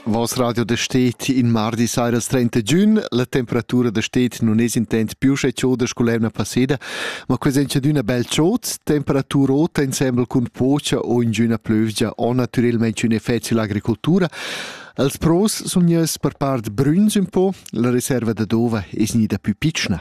Vos radio da stet in mardi sairas 30 giun, la temperatura da stet non es intent più sche chioda scolerna passeda, ma ques en d'una bel chod, temperatura ota insembel cun pocha o in giuna plövgia o natürelmente un effect l'agricoltura. Als pros sun ieus per part brüns un po, la reserva da dova es gnida più pitschna.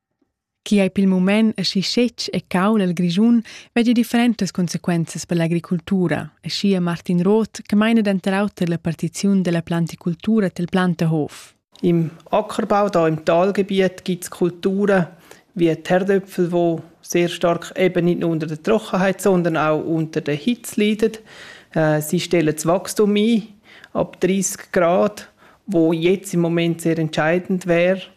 Chi ei pil mument aschi scetg e caul el Grischun, vegli differentas consequenzas per l'agricultura, aschia Martin Roth che meina denter auter la partiziun dalla planticultura tel Planterhof. Im Ackerbau, da im Talgebiet, gibt's Kulturen wie Terdöpfel, wo sehr stark eben nicht nur unter der Trockenheit, sondern auch unter der Hitze leiden. Äh, sie stellen das Wachstum ein ab 30 Grad, wo jetzt im Moment sehr entscheidend wäre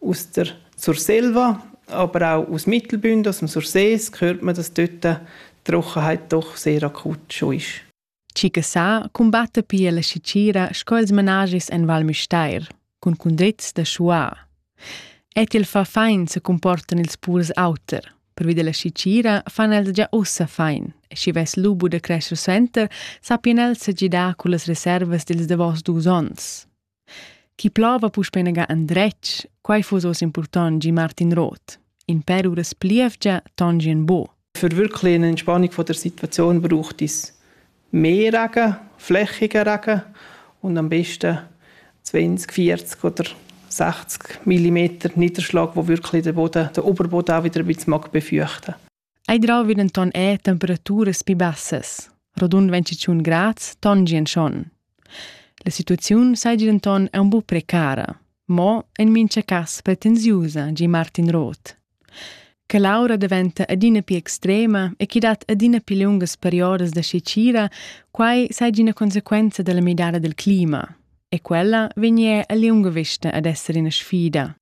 Aus Surselva, aber auch aus Mittelbünden, aus dem Sursee, hört man, dass dort die Trockenheit doch sehr akut schon ist. Cicasà cumbatta pia la Sicira sco ils managis en Val Müstair, cun cundrits da schuà. Et il fa fein se comportan ils purs auter. Pervi della Sicira fan els già ussa fein. E schi vess lubu da crescer suenter, sappien els se gidar cullas reservas dils davos dus ons. Chi plova puspei naga endretg, quei fuss oz impurtont gie Martin Roth. In per uras plievgia tongi en bo. Für wirklich eine Entspannung von der Situation braucht es mehr Regen, flächiger Regen und am besten 20, 40 oder 60 mm Niederschlag, wo wirklich der Boden, der Oberboden auch wieder ein bisschen mag befeuchten mag. Ei drauvi denton era temperaturas pli bassas. Rodund ventschun grads tongien schon. La situaziun seigi denton aunc buc precara, mo en mincha cass pretensiusa, gi Martin Roth. Che l'aura daventa adina più extrema e che dat adina più lungas periodas da scicira, quai seigi ina conseguenza della midada del clima. E quella vegni er a liunga vista ad esser ina sfida.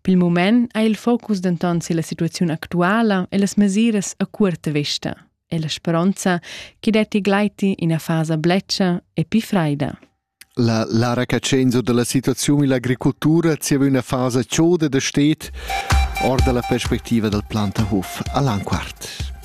Pil mument ha il focus denton silla situaziun actuala e las mesiras a cuorta vesta e la speronza che detti gleiti ina fasa bletscha e pli freida. La Lara Cacenzo dalla situaziun ill'agricoltura zieva üna fasa choda da stet or dalla perspectiva dal Plantahof a Lanquart.